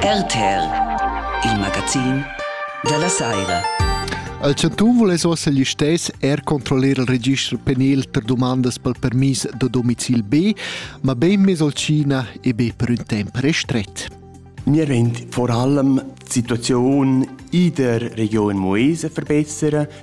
RTL, il magazin dalla saira. Al chantun vuless ossa gli stess er controllar il registro penal per domandas pel permis da domicil B, ma ben mes al China e be per un temp restret. Wir wollen vor allem die Situation in der Region Moese verbessern,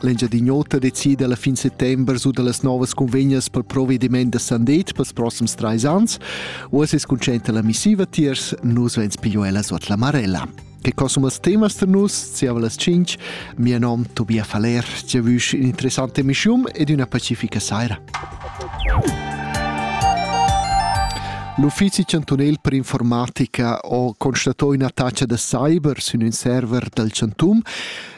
L'Engiadin'Ota decida alla fin settember su dallas novas convegnas pel provediment da Sandet pels prossims trais ans. Uossa es conscienta la missiva tiers, nus vens pigliò ella suot la marella. Che consumas temas tar nus, ziava las 5, mia nom Tobias Faller, ti avüsch un'interessante emischium ed una pacifica saira. L'uffizi chantunel per informatica ha constatato ina taccia da cyber sin un server dal Chantum.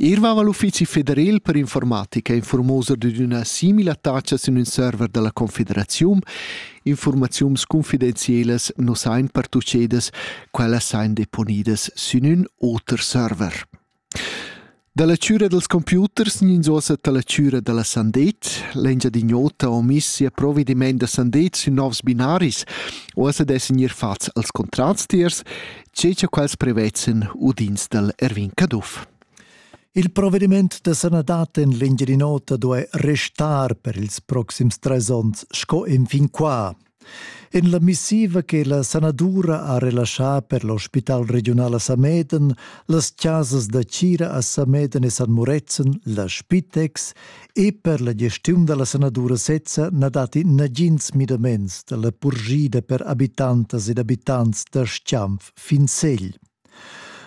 Eir vaiva l'uffizi federel per informatica informosa dad üna simila tacha sün ün server da la Confederaziun. Infuormaziuns confidenzielas nu sain pertuchedas, quellas sain deponidas sün ün oter server. Da la chüra dels computers gnanzuossa ta la chüra da la Sandet. L'Engiadin'Ota ho miss sia provedimaint da Sandet sün novs binaris, o as ed essan gnir fats als contrats tiers tge cha quels prevezzan udins dal Erwin Caduff. Il provediment da sanadad en l'Engiadin'Ota duai restar per ils proxims trais onns sco enfin qua. En la missiva che la sanadura ha relaschà per l'ospital regional a Sameden, las chasas da Cira a Sameden e San Murezzan, la Spitex e per la gestiun dalla sanadura sezza na datti nagins midaments dalla purgida per habitantas ed abitants da Schianf fin Segl.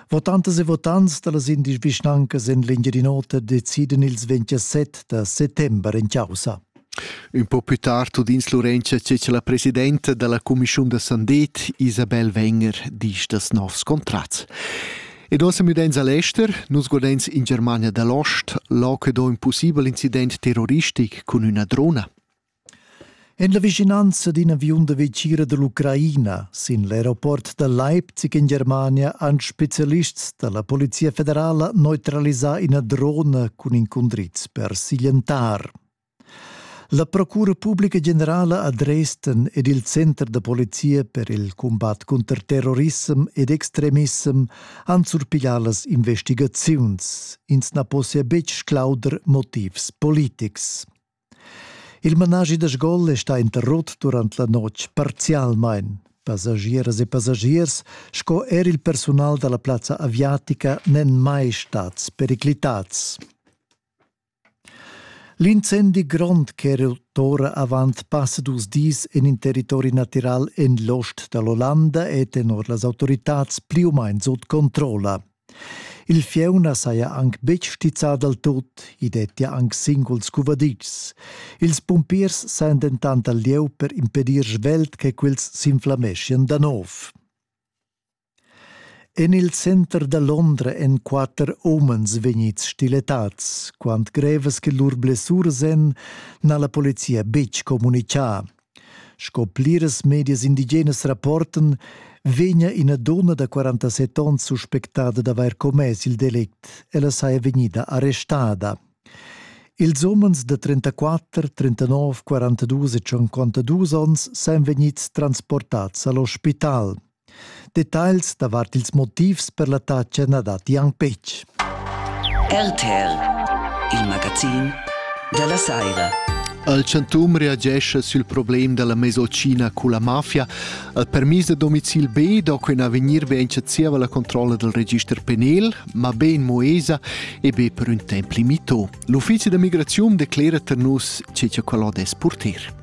Votantas e votants dallas indisch vischnancas en l'Engiadin'Ota deciden ils 27 da settember en causa. Un po più tardu dins Lorenza c'è la presidenta della Commissione da Sandet, Isabel Wenger, disch das novs Kontratts. Ed ossa müdains a l'ester, nus godains in Germania da l'Ost là che do ün pussibel incident terroristic cun üna drona. En la vicinanza d'in aviun da vecira da l'Ucraina sin l'aeroport da Leipzig in Germania han spezialists da la Polizia federala neutralisà ina drona cun incundriz per siglientar. La Procura publica generala a Dresden ed il Center da polizia per il combat cunter terrorissem ed extremissem han surpiglià las investigaziuns. Ins na possia betg sclauder motivs politics. Il managi da sgol è stà interrotto durant la notg parzialmain. Passagieras e passagiers sco er il persunal da la plazza aviatica n'èn mai stads periclitads. L'incendi grond ch'era tutora avant passa dus dis en in territori natiral en l'ost da l'Ollanda è tenor las autoritads pli u main sut controlla. Il fieu na saja anc betg stizzà dal tut, i dettia anc singuls cuvaditschs. Ils pumpiers sajan dentant al lieu per impedir svelt che quels s'inflameschian da nov. En il center da Londra èn quatter umens vegnids stiletads. Quant grevas che lur blessuras èn, n'ha la polizia betg communitgà. Sco pliras medias indigenas rapportan, vegnia ina donna da 47 onns suspectada d'avair commess il delict. Ella saja vegnida arrestada. Ils umens da 34, 39, 42 e 52 onns sajan vegnids transportads a l'ospital. Detagls davart ils motivs per l'attacca na datti anc betg. RTL, il magazin da la saira. Al chantun reagescha sül problem da la mesocina cu la mafia. Al permis da domicil B do quin avegnir be enchazieva la controlla del register penal, ma be in Moesa e be per un temp limito. L'uffici da migraziun declera ter nus che che quello des purtir.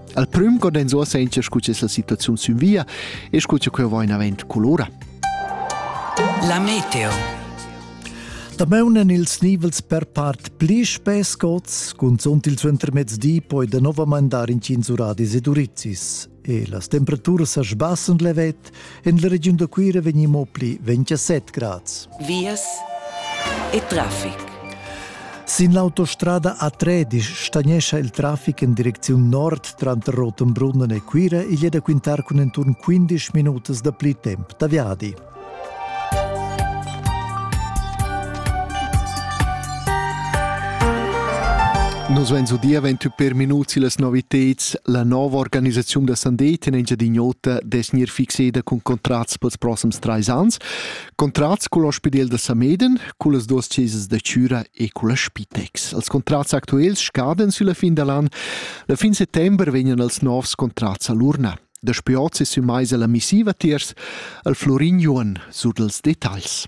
Al prüm co dens uossa encha scu es la situaziun sün via e scu cha queu va inavent colora. La meteo Dameunen ils nivels per part pli spess gods, cunzunt il suentermezdi poi da novamain dar in 5 uradis ed urizis. E las temperaturas sa sbassen levet, En la regiun da Cuira vegni mo pli 27 grads. Vias e traffic. Sin l'autostrada A3 stagnescha il traffic en direcziun nord tranter Rotenbrunnen e Cuira. Igl è da quintar cun enturn 15 minutas da pli temp da viadi. Nus vein udia ventü per minuts las noviteds. La nova organisaziun da Sandeten en Giadignota desnir fixeda cun contrats pels prossims trais ans. Contrats cul ospidel da Sameden, cullas duas chesas da Cüra e culla Spitex. Als contrats actuels scaden sülla fin dall'an. La fin settember vegnan els novs contrats a l'urna. Daspö hoz es ün mais ella missiva tiers al Florin Juon sur dals detagls.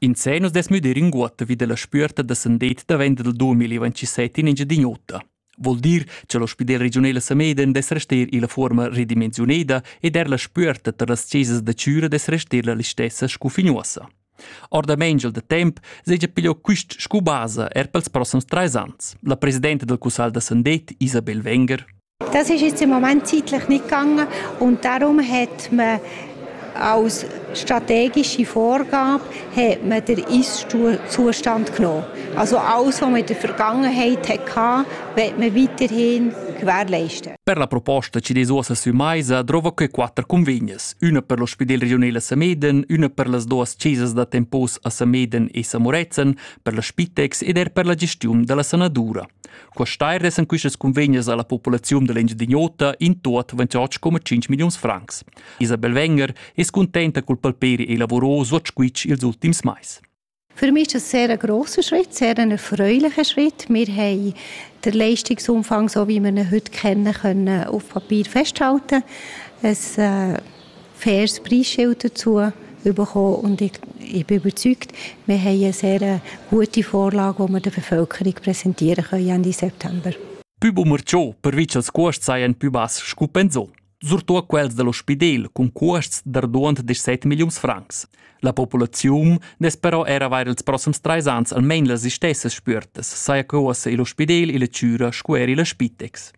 In sé nus des müder inguotta vi della spüerta da sandeit davent del 2027 in Engiadin'Ota. Vol dir che l'ospidel regiunel a Sameden des rester illa forma redimensiuneda ed er la spüerta tar las chesas da Chüra des rester la listessa scu fignuossa. Orda Mengel de temp segia pigliò quist scu basa er pels prossams trais ans, la presidenta del Cussal da Sandet, Isabel Wenger. Das ist jetzt im Moment zeitlich nicht gegangen und darum hat man als strategische Vorgabe hat man den Eiszustand genommen. Also alles, was man in der Vergangenheit hatte, wird man weiterhin gewährleisten. Per la proposta Cidesuosa sü Maisa drova que quatter convegnes, üna per l'ospidel regional a Sameden, üna per las duas chesas da tempos a Sameden e Samorezen, per la Spitex ed er per la gestiun da la sanadura. Questair essan quistas cunvegnas alla populaziun dall'Engiadin'Ota in tuot 28,5 milliuns francs. Isabel Wenger es contenta cul palperi e lavurò suot squitsch ils ultims mais. Für mich ist das ein sehr grosser Schritt, sehr ein erfreulicher Schritt. Wir haben den Leistungsumfang, so wie wir ihn heute kennen, können auf Papier festhalten. Es äh, fest Preisschäute zu bekommen und ich, ich bin überzeugt, wir haben eine sehr äh, gute Vorlage, die wir der Bevölkerung präsentieren können Ende September. Più bumerciò, pervice als cuosts sajan più bass scu pensò. Surtò quels dell'ospidel cun cuosts d'arduond de 7 milliuns francs. La populaziun nes però era avair els prossums treis ans almein las istessas spürtas, saja que uossa il ospidel e la chüra scu er la spitex.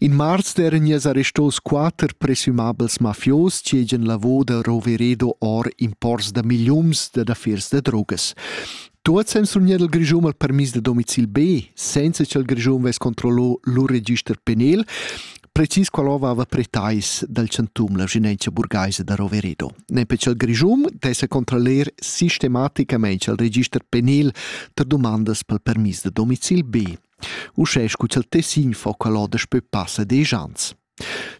In marster gniess arrestos quatter presumabels mafios chi hegian lavò da Roveredo or imports da milliuns dad affers da drogas. Tuots han surgnieu dal Grischun il permis da domicil B, senza cha'l Grischun vess controllò lur register penal, precis qual aveva pretais dal chantum la vigilenza burgaisa da Roveredo. Nempe cha'l Grischun dessa controllar sistematicamaing al register penal tar dumandas pel permis da domicil B. Uschè scu cha'l Tessin fo quel on daspö passa desch ans.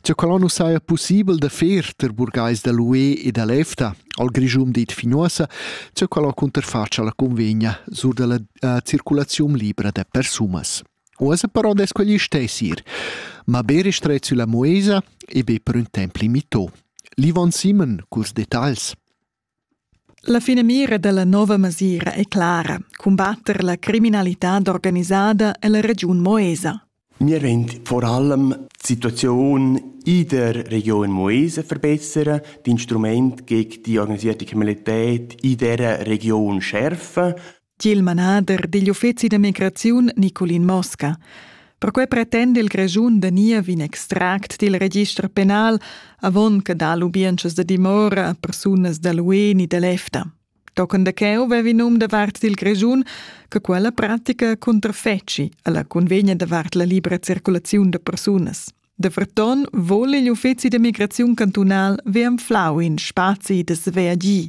Cha quel on nu saja pussibel da fer tar burgais da l'UE e da l'EFTA, al Grischun dit finuossa, cha quel on cunterfatscha la cunvegna sur da la uh, circulaziun libra da persunas. Uossa però des quegli stess ir, ma be ristret sülla muesa e be per ün temp limitò. L'Ivan Simon, curs detagls. La finamira dalla nova masira è clara cumbatter la criminalitad organisada ella regiun Moesa. Wir wollen vor allem die Situation in der Region Moesa verbessern, die Instrumente gegen die organisierte Kriminalität in dieser Region schärfen Tiel manader digl uffeci da migraziun Nicolin Mosca. Perquei pretende il Grischun da nia vin extract dil register penal avon che da lubientschas da dimora a persunas dall'UE ni dall'EFTA. Tochen da cheu vevi num da vart dil Grischun che quella pratica cunterfeci alla convegna da vart la libra circulaziun da persunas. Da Verton vole gli uffeci da migraziun cantunal vi anflau in spazi da sveagì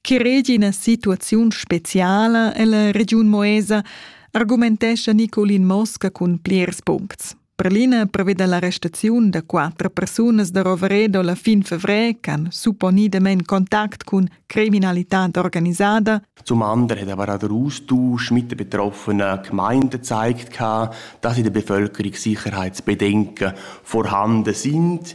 Chi regi ina situaziun speciala ella regiun Moesa, argumentescha Nicolin Mosca cun plirs puncts. Per l'ina preveda l'arrestaziun da quattro persunas da Roveredo la fin fevrer ch'han supponidament contact cun criminalitad organisada. Zum anderen aber auch der Austausch mit den betroffenen Gemeinden zeigt, dass in der Bevölkerung Sicherheitsbedenken vorhanden sind.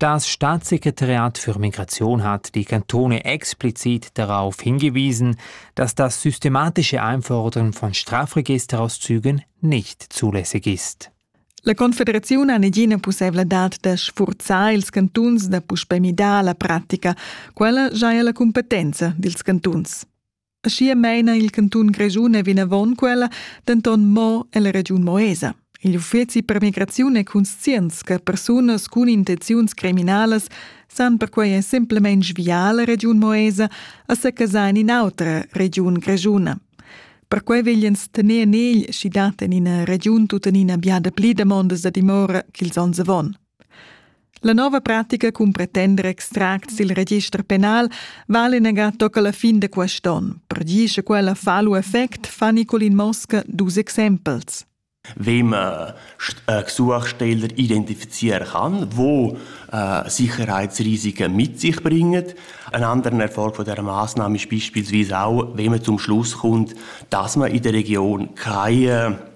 Das Staatssekretariat für Migration hat die Kantone explizit darauf hingewiesen, dass das systematische Einfordern von Strafregisterauszügen nicht zulässig ist. La Confederaziun ha negina pussevladad da sfurzar ils cantuns da puspè midar la pratica. Quella giaja la cumpetenza dils cantuns. Aschia meina il cantun Grischun e vinavon quella, denton mo ella regiun Moesa. Il uffeci per migraziun e conscienz che persunas cun intenziuns criminalas san perquei semplamein sviar la regiun Moesa a secasar in in'autra regiun grischuna. Perquei vegliens tener nel schi dat en ina regiun tuttenina biada pli damondas da dimora ch'ils onns avon. La nova pratica cun pretender extracts dil register penal vale negar tocca la fin de quest onn. Per dir che quella fa lu effect, fa Nicolin Mosca dus exempels. Wem äh, äh, Suchstellen identifizieren kann, wo äh, Sicherheitsrisiken mit sich bringen. Ein anderer Erfolg von dieser Maßnahme ist beispielsweise auch, wenn man zum Schluss kommt, dass man in der Region keine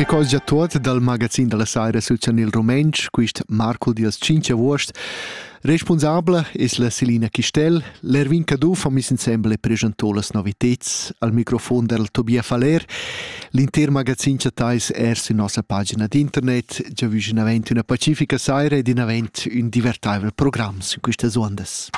Che cosgia tuot dal magazin da la saira sul chanel rumentsch, quist Marco Dias 5 avuost. Responsabla es la Selina Chistel. L'Erwin Caduff ha mis insembel e preschantò las noviteds al microfon del Tobia Faller. L'inter magazin chattais er su nossa pagina d'internet. Già vus in avent una pacifica saira ed in avent un divertaivel programm su quistas ondas.